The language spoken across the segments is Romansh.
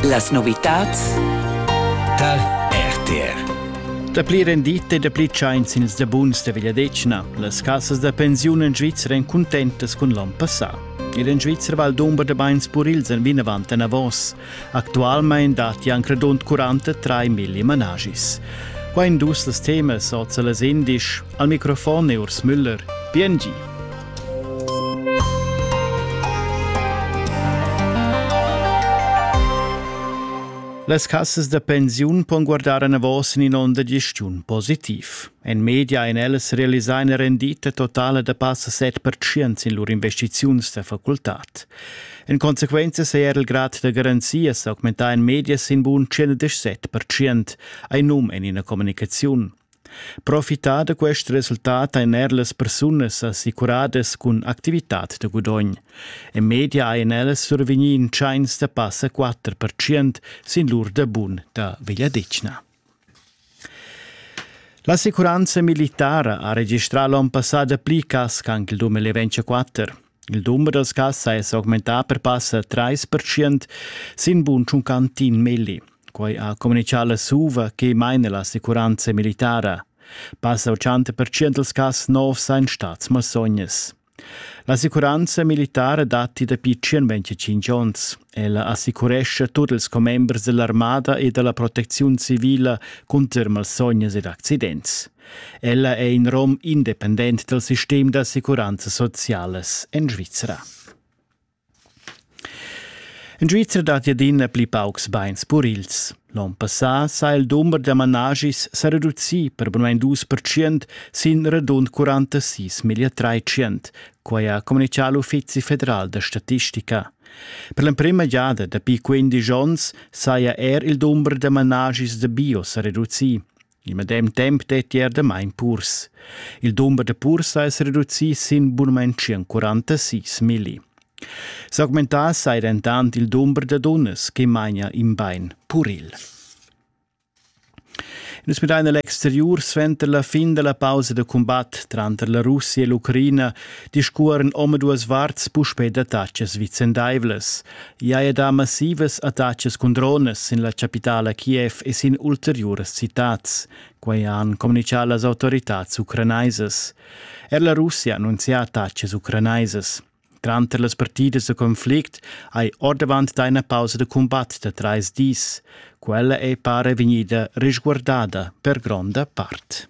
Las novitads tar RTR. Dapli rendite e dapli tschains ils da buns da Vegliadetgna. Las cassas da pensiun en Svizra èn cuntentas cun l'onn passà. Ed en Svizra Val d'Umber da Bains Purils èn vinavant enavos. Actualmain datti anc radund 43 migli managis. Qua in dus las temas oz a las indisch. Al microfon è Urs Müller. Bien gi. Las cassas da pensiun pon guardar anavos in onda gestiun positiv. En media ein ellas realisar ina rendita totala da passa 7% sin lur investiziuns da facultad. En consequenza sei er il grad da garanzia s'augmentar en media sin bun 117%, ein num en ina communicaziun. Profitar da quest resultat ein er las persunas assicuradas cun activitad da gudogn. En media ein ellas survegni in tscheins da passa 4 percent sin lur debun da Vegliadetgna. L'assicuranza militara ha registrà l'onn passà dapli cas che anche il 2024. Il dumber dals cassai è s'augmentà per passa 30% sin bun tschuncantin milli. Quai ha communitgà la SUVA che maina l'assicuranza militara. Passa 80% dals cass novs ein stats malsognas. L'assicuranza militara datti dapi 25 onns. Ella assicurescha tut ils commembers dell'armada e della protecziun civila cunter malsognas ed accidents. Ella è in rom independent dal sistem d'assicuranza socialas en Svizzera. In Svizzera dat adina pli paucs beins purils. L'on passà s'ha il dumber da manaschis sa reducì per bunain dus percent sin radund quarantasis milla trais quai ha communitgà l'Uffizi federal da statistica. Per l'emprima giada dapi quindisch onns saja er il dumber da manaschis da bio sa reducì. Il medem temp detti er damain purs. Il dumber da purs ha es reducì sin bunamain 46 milli. S'augmentà sai dentant il dumber da dunnas che maina in bain puril. Nus midain l'exteriur suenter la fin della pausa da combat tranter la Russia e l'Ucraina discuoren omaduas varts puspè d'attacas vicendaivlas. I haja dà massivas attachas cun dronas sin la chapitala Kiev e sin ulteriuras citads. Quai han communitgà las autoritads ucranaisas. Er la Russia annunzia attachas ucranaisas. Tranter las partidas da conflict hai ordavant dà ina pausa da cumbat da trais dis. Quella è pare vegnida resguardada per gronda part.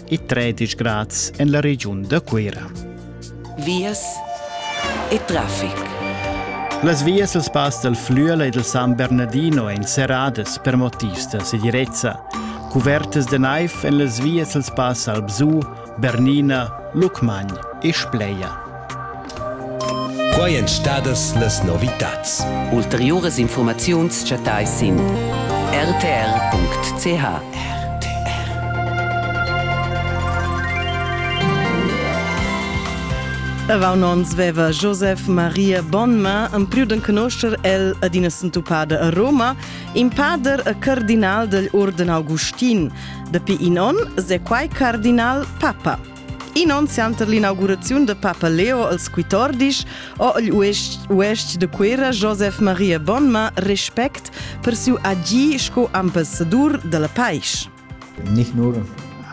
e tredisch grads en la regiun da Cuira. Vias e traffic. Las vias dal pass dal Flüela e dal San Bernardino èn serradas per motivs da segirezza. Cuvertas da naiv en las vias dal pass Albzù, Bernina, Lucmagn e Spleia. Quai èn stadas las novitads. Ulteriuras infurmaziuns chattais sin rtr.ch. Avant ons veva Joseph Maria Bonma en più d'en conoscer el ad ina sentupada a Roma, in pader e cardinal degl Urden Augustin. Dapi in on se quai cardinal papa. In onn center l'inauguraziun de Papa Leo als quitordis ho il uestg de Cuera Josef Maria Bonma respect per siu agì sco ambassador della paisch. Nicht nur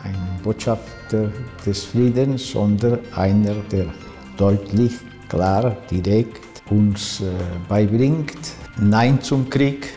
eine Botschafter des Friedens, sondern einer, der deutlich, klar, direkt uns äh, beibringt Nein zum Krieg,